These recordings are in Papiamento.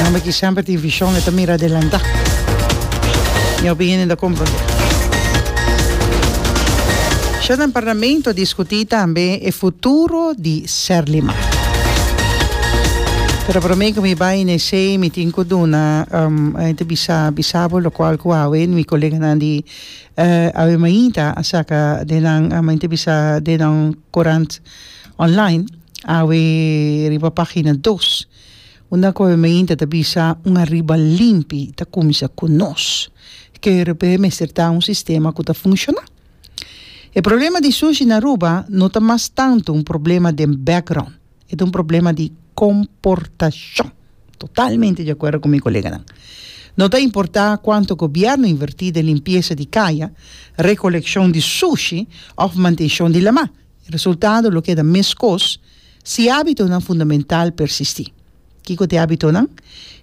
Homber ki semper tin vision e ta mira adelanta. Mi opinion e ta comprende. Short den parlamento discuti tambe e futuro di Serlima. Pero prome cu mi bay n'esey mi tin cu duna a hende bisa bisa bo locual cu awe mi coleganan di awe mainta a saca den nan a hende bisa den nan corant online. Awe riba pagina dos. Unda gobemeinte ta bisa un ariba limpi ta cuminsa cu nos. KRP mester ta un sistema cu ta funciona. E problema di sushi na Aruba no ta mas tanto un problema den background. E ta un problema di comportacion. Totalmente di acuerdo cu mi coleganan. No ta importa cuanto gobierno inverti den limpieza di caya, recoleccion di sushi of mantencion di lama. Resultado lo keda meskos si hábitonan fundamental persistí. Kiko ta e hábitonan?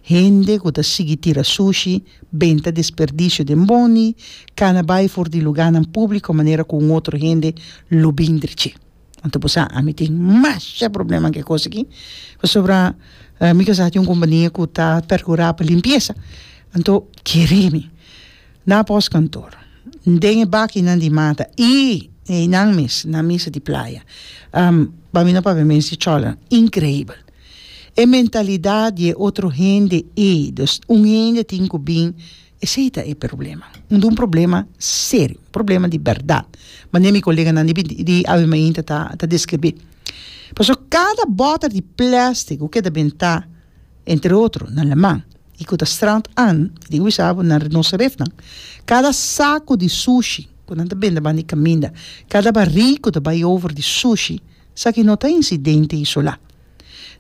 Hende ku ta sigui tira sushi, benta desperdisio den boni, kana bai for di lugánan públiko manera ku un otro hende lo bin drici. Anto bo sa, ami tin masha probleman ku e kos aki pasobra mi kasa tin un kompania ku ta perkurá pa limpiesa. Anto kere mi Na postkantoor, den e bakinan di mata i na einan mes na misa di playa. Pa mi no papia mes di cholran, increibel. E mentalidad di e otro hende ei, dus un hende tin cu bin, esey ta e problema. Unda un problema serio, un problema di berdad, manera mi coleganan di Ave Mainta ta describi. Pasobra cada boter di plastic cu keda benta, entre otro, na Leman, i ku ta Strand Ann, i tin wisa bo na rinoserefnan. Kada saku di sushi ku nan ta bende banda di kaminda, kada barik ku ta bai over di sushi, esaki no ta insidente isolá.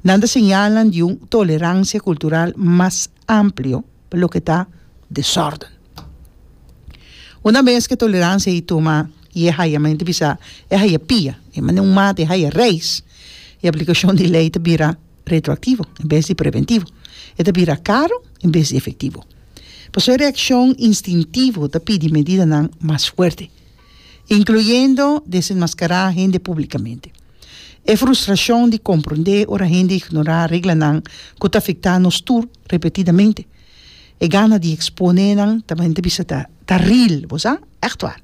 Nan ta señalnan di un toleransia kultural mas amplio pa loke ta desòrden. Una bes ku e toleransia ei tuma i e hayamente bisa e haya pia, e mane un mata e haya reis, e aplikashon di lei ta bira, retroactivo en bes di preventivo e ta bira caro en bes di efectivo. Paso e reaccion instintivo ta pidi medidanan mas fuerte, incluyendo desenmascara hende publicamente. E frustracion di comprende ora hende ignora reglanan cu ta afecta nos tur repetidamente, e gana di expone nan ta men ta bisa ta ta real, bo sa? Echtwaar.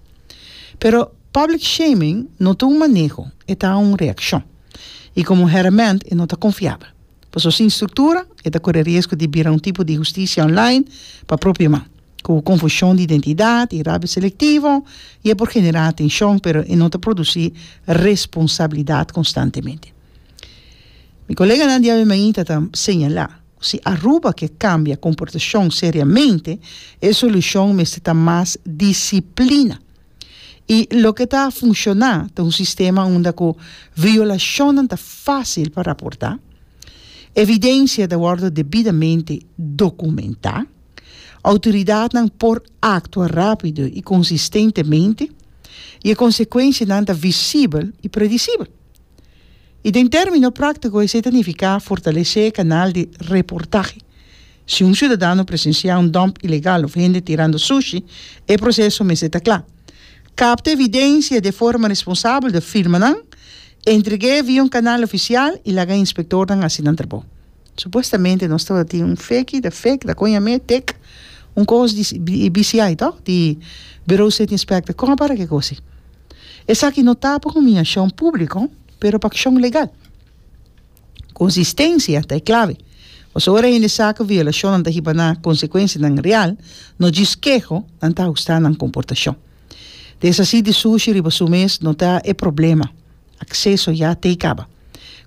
Pero public shaming no ta un maneho, e ta un reaccion. i komo hèrèment e no ta konfiabel. Paso sin struktura e ta kore riesgo di bira un tipo di hustisia online pa propio man, ku konfushon di identidat i rabia selektivo, i e por generá atenshon pero e no ta produsí responsabilidat konstantemente. Mi koleganan di ABMI ta ta señalá ku si Aruba ke kambia komportashon seriamente e solushon mester ta mas disiplina. I loke ta funshoná ta un sistema unda ku violashonnan ta fásil pa raportá, evidensia ta wòrdu debidamente dokumentá, outoridatnan por aktua rápido i konsistentemente, i e konsekuensianan ta visibel i predisibel. I den término práktiko esei ta nifiká fortalesé e kanal di reportahe. Si un siudadano presensiá un dump ilegal of hende tirando sushi, e proseso mester ta kla. Kapta evidensia di e forma responsabel di firmanan, entreg'é via un kanal ofisial i laga e inspektornan hasi nan trabou. Supuestamente nos tabata tin un feki, ta fek, ta kon yam'é tek, un kos di di BCI to, di Bureau State Inspector. Kon a para kikosi? Esaki no ta pa humiashon públiko, pero pa akshon legal. Konsistensia ta e klave. Pasobra ora hende sa ku violashonnan ta hiba na konsekuensianan real, no djis keho, nan ta hustá nan komportashon. Desasí di sushi riba su mes no ta e problema, akseso ya t'ei kaba.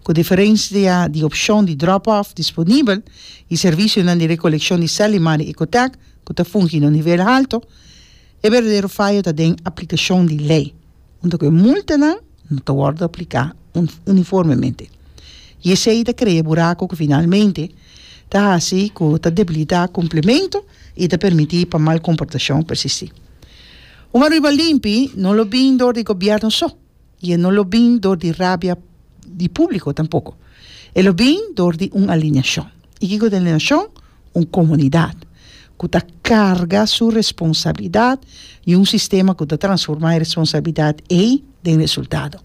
Ku diferensia di opshon di drop-off disponibel i servisionan di rekolekshon di sèl i mar di Ecotech ku ta fungi na un nivel haltu, e berdadero fayo ta den aplikashon di lei. Huntu ku e multanan no ta wòrdu apliká uniformemente i esei ta krea buraku ku finalmente ta hasi ku ta debilitá komplementu i ta permití pa mal komportashon persistí. Un Aruba limpi no lo bin dor di gobièrnu so i e no lo bin dor di rabia di públiko tampoko. E lo bin dor di un alineashon. I kiko ta e nashon? Un komunidat ku ta karga su responsabilidat i un sistema ku ta transformá e responsabilidat ei den resultado.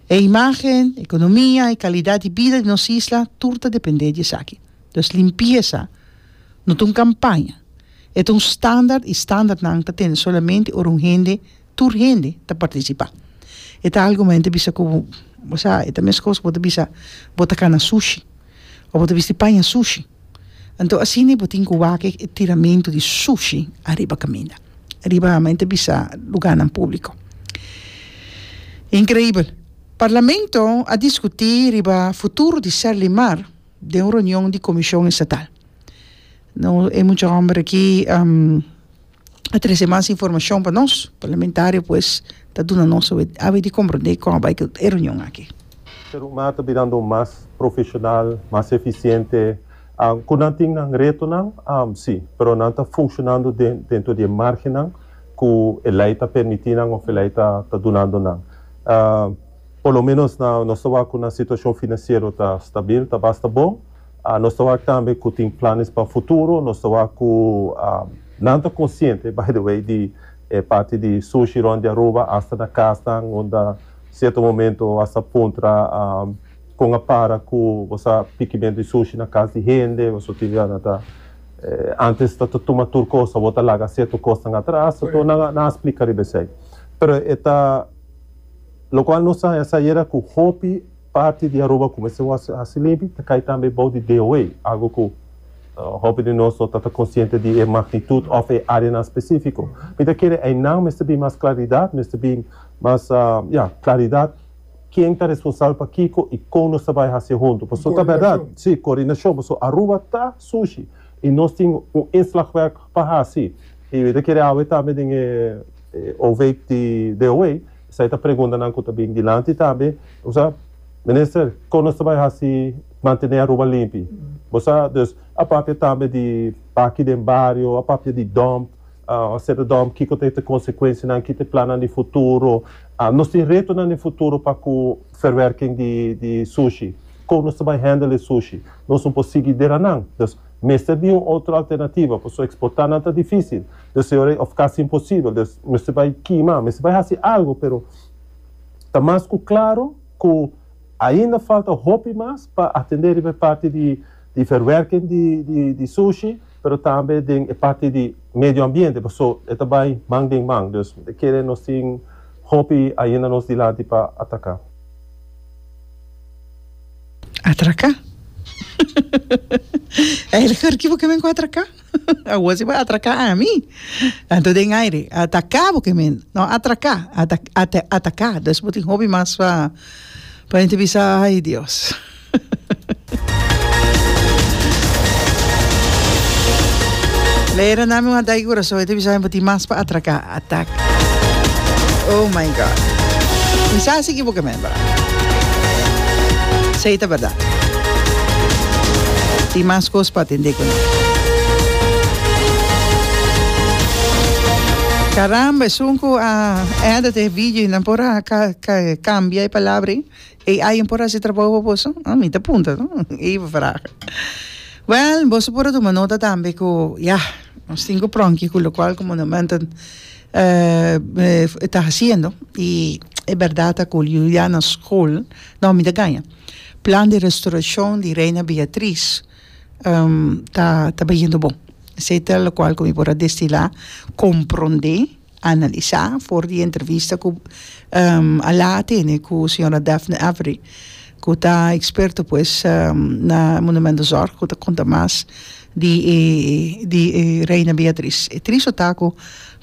E imágen, ekonomia i kalidat di bida di nos isla tur ta dependé di esaki. Dus limpiesa no ta un kampaña, e ta un standard i standardnan ta tende solamente ora un hende tur hende ta partisipá. E ta algu hende ta bisa ku bo sa, e ta meskos bo ta bisa bo ta kana sushi o bo ta bisti paña sushi. Anto asina bo tin ku wak e tiramentu di sushi ariba kaminda, ariba mi ta bisa lugánan públiko. Inkreibel. Parlamento a diskutí riba futuro di Sèldi Mar den un reunion di komishon estatal. No e mucha hòmber aki a trece mas informacion pa nos parlamentario pues ta duna nos awe di comprende con a bay cu e reunion aki. Serumah ta birando mas profesional, mas eficiente. Cu nan tin nan retonan? Si, pero nan ta funcionando dentro di e margennan cu e ley ta permiti nan of e ley ta dunando nan. Por lo menos nos ta wak cu nan situacion financiero ta stabil, ta basta bon. Nos ta wak tambe ku tin planes pa futuro. Nos ta wak ku nan ta konsiente, by the way, di e parti di sushi rònt di Aruba asta na kasnan unda sierto momento bo a sa puntra kon a para ku bo sa pikimentu di sushi na kas di hende. Pasobra tin biaha nan ta antes ta tuma tur kos, awor ta laga sierto kosnan atras. So nan a splika riba esei. Pero e ta lokual nos a haña sa ayera ku hopi. Parti di Aruba kumesa e wòrdu hasi limpi ta kai tambe bou di DOA, algu ku hopi di nos no ta ta konsiente di e magnitut òf e áreanan spesífiko. Mi ta kere einan mester bin mas klaridat, mester bin mas, ya, klaridat ken ta responsabel pa kiko i kon nos ta bai hasié huntu. Pasobra ta bèrdat, sí, koordinashon, pasobra Aruba ta sushi i nos tin un inslagwerk pa hasi. I mi ta kere awe tambe den e. Hoofdijk di DOW, esei ta preguntanan ku ta bin dilanti tambe. Bo sa, Minister, kon nos ta bai hasi mantené Aruba limpi? Bo sa, dus a papia tambe di baki den bario, a papia di dòmp, seta dòmp, kiko ta e ta konsekuensianan, ki ta e plannan di futuro. Nos tin retonan den futuro pa ku verwerking di sushi. Kon nos ta bai handle e sushi? Nos no por sigui deranan. Mester bin un otro alternativa, pasobra exportá nan ta difícil, des señor ey, of casi imposibel, des mester bay kima, mester bay haci algo, pero ta mas cu claro cu ainda falta hopi mas pa atendé riba e parti di di verwerking di di di sushi, pero tambe den e parti di medio ambiente, paso e ta bay man den man, dus e kere nos tin hopi ainda nos dilanti pa atacá. Atraka? Ai el hurki bo ke men ku atraka? Awor si bo a atraka ami. Anto den aire, ataka bo ke men. No, atraka, ata ata ataka. Dus bo tin hopi mas pa pa mente bisa ai Dios. Lei Ranami wan dai kurason, e ta bisa bo tin mas pa atraka. Attack oh my God Kisa si equivocament bra Sey ta berdad Tin mas cos pa atende cu nan Caramba esun cu a edit e video y nan por a cambia e palabra ey AI por hasi trabou pa boso? Hm, mi ta punta no, ei bo vraga. Well, boso por a tuma nota tambe ku ya, nos tin ku pronki ku lokual ku Monumental ta hasiendo i e bèrdat a kul Juliana School, no mi ta gaña, Plan di Restaurashon di Reina Beatriz ta ta bahiendo bon. Esei ta lokual ku mi por a destilá, komprondé. Analisá for di e entrevista ku Alaa a tene ku señora Daphne Avery, ku ta eksperto pues na monumentozorg, ku ta konta mas di e di e Reina Beatriz. E triste ta ku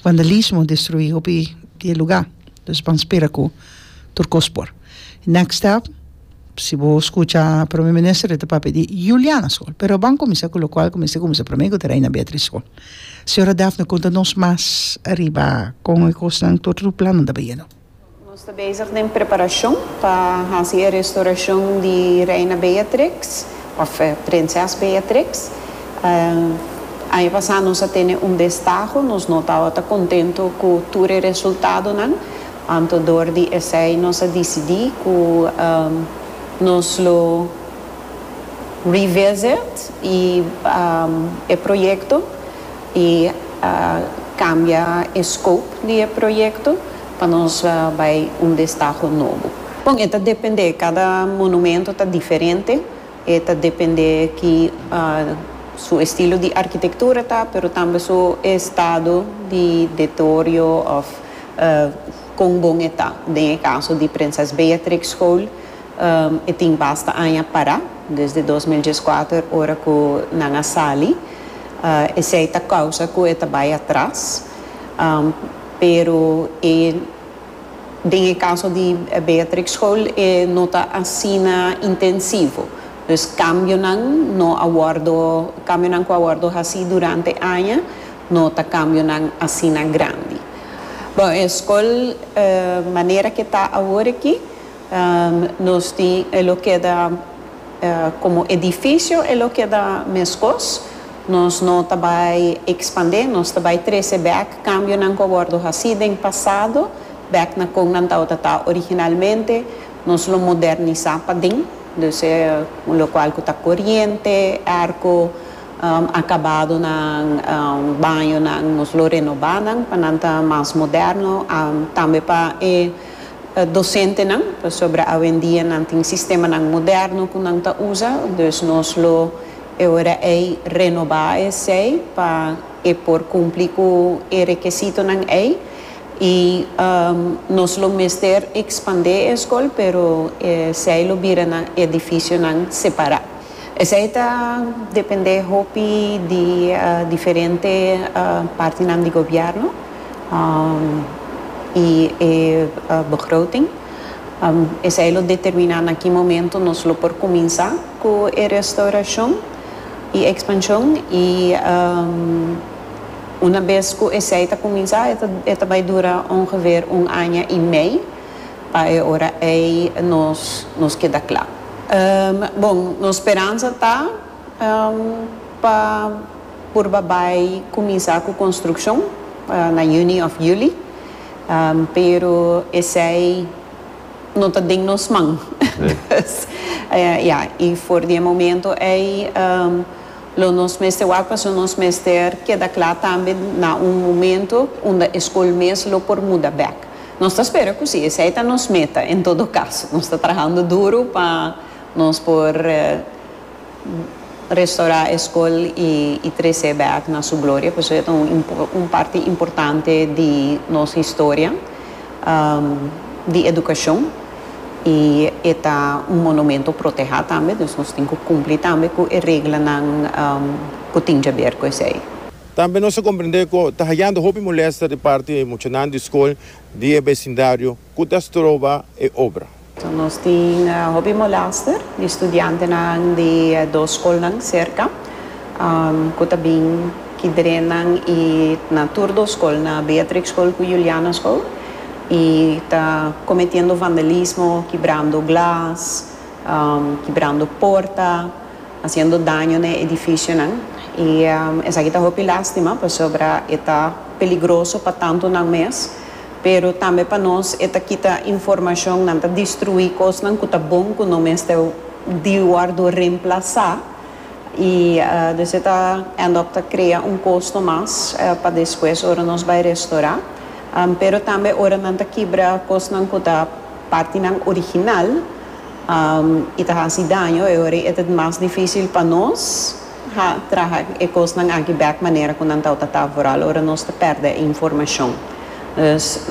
vandalismo destruí hopi di e lugá, dus ban spera ku tur kos por. Next step. Si bo scucha prome minister e ta papia di Juliana school pero bo a cuminsa cu locual cu mester cuminsa prome cu ta Reina Beatriz school señora Daphne cunta nos mas ariba con e cosnan tur tur plannan ta bayendo. Nos ta bezig den preparacion pa haci e restoracion di Reina Beatrix of Prinses Beatrix aña pasa nos a tene un destaho nos no tabata contento cu tur e resultadonan Anto dor di esei nos a disidí ku nos lo revisit e e proyekto i kambia e scope di e proyekto pa nos bai un destaho nobo. Bon e ta dependé, kada monumento ta diferente. E ta depende ki su estilo di arkitektura ta, pero tambe su estado di detorio of kon bon e ta. Den e kaso di Prinses Beatrix School e tin basta aña para, desde dos mil dies kuater ora ku nan a sali. Esei ta kousa ku e ta bai atras, pero e. Den e caso di Beatrix School e no ta asina intensivo, dus cambionan no a wordo, cambionan cu a wordo haci durante aña no ta cambionan asina grandi. Bon, e school manera cu e ta awor aki nos tin e lo keda. Komo edifisio e lo keda meskos, nos no ta bai ekspandé, nos ta bai trese bèk kambionan ku a wòrdu hasí den pasado, bèk na kon nan tabata ta originalmente, nos lo modernisá paden, dus e un lokual ku ta koriente, èrko, akabadonan, bañonan nos lo renobá nan pa nan ta mas moderno, tambe pa e docentenan, pasobra awendia nan tin sistemanan moderno cu nan ta uza, dus nos lo e ora ey renoba esey pa e por cumpli cu e rekesitonan ey y nos lo mester expande e escol pero esey lo bira nan edificionan separa. Esei ta dependé hopi di diferente partinan di gobièrnu i e begroting. Esei lo determiná na ki momentu nos lo por kuminsá ku e restaurashon i ekspanshon i unabes ku esei ta kuminsá e ta bai dura ongeveer un aña i mei. Pa e ora ei nos nos keda kla. Bon, nos speransa ta pa purba bai kuminsá ku konstrukshon na yüni òf yüli, pero esei no ta den nos man. Dus, ya, i for di e momentu ei lo nos mester wak pasobra nos mester keda kla tambe na un momentu unda e skol mes lo por muda bèk. Nos ta spera cu si esey ta nos meta, en todo caso, nos ta trahando duro pa nos por restaura e scol y trece back na su gloria, pasobra e ta un parti importante di nos historia di educacion y e ta un monumento proteha tambe, nos tin cu cumpli tambe cu e reglanan cu tin djaber cu esey. Tambe nos a komprendé ku ta hayando hopi molèsta di parti di muchanan di skol di e besindario ku ta stroba e obra. Nos tin hopi molèster di studiantenan di e dos skolnan serka ku ta bin kidrenan i na tur dos skol, na Beatrix Skol ku Juliana Skol, i ta kometiendo vandalismo, kibrando glas, kibrando porta. haciendo daño na e edificionan y esaki ta hopi lastima pasobra e ta peligroso pa tantonan mes pero tambe pa nos e ta kita informacion nan ta destrui cosnan cu ta bon cu no mester di wordo reemplaza y dus e ta end up ta crea un costo mas pa despues ora nos bay restora pero tambe ora nan ta kibra cosnan cu ta partinan original. I ta hasi daño e ora e ta mas difícil pa nos traha e cosnan aki bek manera cu nan tau ta ta vooral ora nos ta perde e informacion. Dus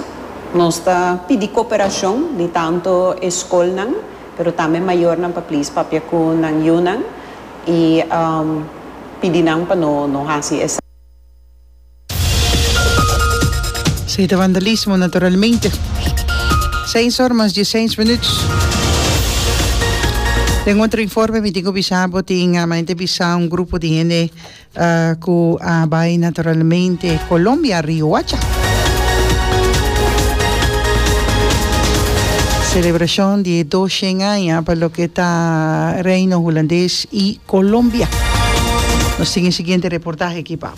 nos ta pidi cooperacion di tanto e scolnan pero tambe mayornan pa please papia cu nan yunan i pidi nan pa no hasi esaki. Esei ta vandalismo naturalmente. Seis or mas diesseis minuut. Den otro informe mi tin cu bisa abo tin a maente bisa un grupo di hende cu a bay naturalmente Colombia Riohacha. Celebracion di e doshen aña pa loke ta Reino Hulandes y Colombia. Nos tin e siguiente reportahe aki pa.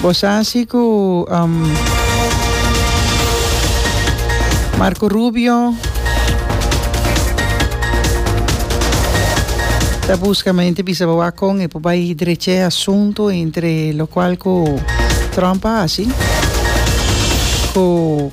Bo sa si ku Marco Rubio ta buska mente bisa bo wak kon e por bai drecha e asuntu entre lokual ku Trump a hasi ku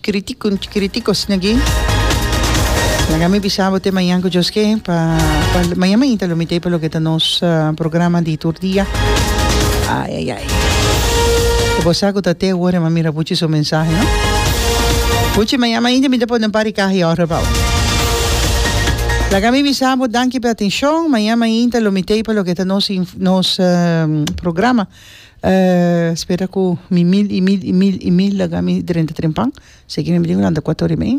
Críticos tin aki. Laga mi bisa bo te mañan cu Dios ke pa mañan mainta lo mite pa loke ta nos programa di tur dia. Ay ay ay. Cu bo sa cu ta te worde ma mira buchi su mensahe no. Buchi mañan mainta mi ta pone un par di caha y ora pa bo. Laga mi bisa bo danki p'e atencion. Mañan mainta lo mite pa loke ta nos programa. Spera ku mi mil i mil i mil i mil laga mi drenta tren pan, seki mi tin ku lanta kuator di mei.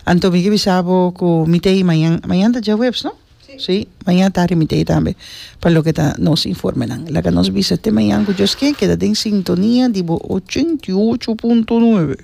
Anto mi ke bisa bo ku mi ta ei mañan, mañan ta djahuebs no? Si, mañan tardi mi ta ei tambe pa loke ta nos informenan. Laga nos bisa te mañan ku Dios ken, keda den sintonia di bo ochenta i ocho punto nuebe.